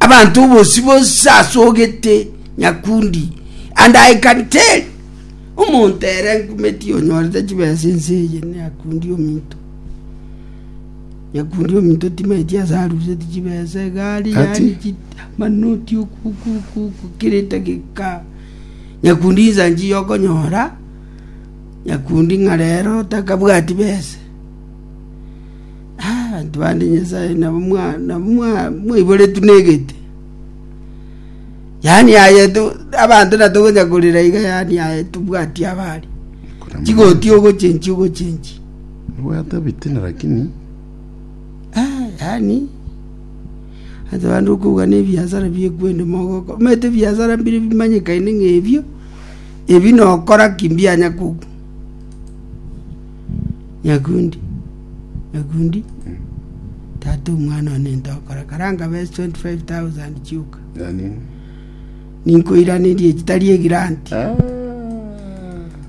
abanto bose bose asogete nyakundi and i can tell omonto ere nkumeti onyorete chibesa ense eye nyakundi ominto nyakundi ominto timaeti ase aruseti chibesa egari Ati? yari chit- amanoti okukukuku kirete geka nyakundi insa nchiya okonyora nyakundi ng'a rero takabwati besa Abanto bande Nyasae nabo mwa- nabo mwa- mwaiboretwe negete. Yaani aye tu abanto natogocha korera iga yaani aye tobwati abari. Chigoti ogochenchi ogochenchi. Nibwate ebitina lakini Ah, yaani ase bande okouga na ebiasara biekwende mogoko omanyete ebiasara mbire bimanyekaine ng'a ebio ebi nokora ki mbianya koku Nyakundi, nyakundi, tata omwana one ntokora karanga bes 25000 chioka Yaani, ninkoiranerie chitari egiranti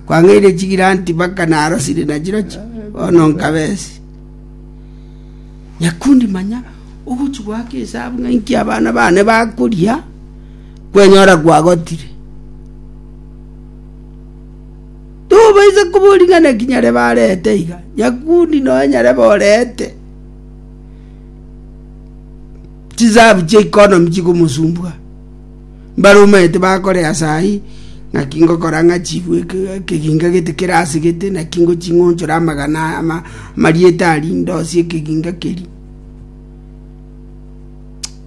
kwang'eire chigiranti mpaka narosire nachirochi bono nkabesi nyakundi manya ogochi gwaka esabu ng'a inki abana bane bakoria kwenyora kwagotire Tobaisa koboringa naki nyare barete iga, nyakundi nonya nyare borete chisahabu chia economy chikomosumbua. Mbare omanyete bakore ase ayio naki ngokora ng'a chibwe ekeginga gete kere ase gete naki ngoching'onchora amagana amarieta aria ndosie ekeginga keria.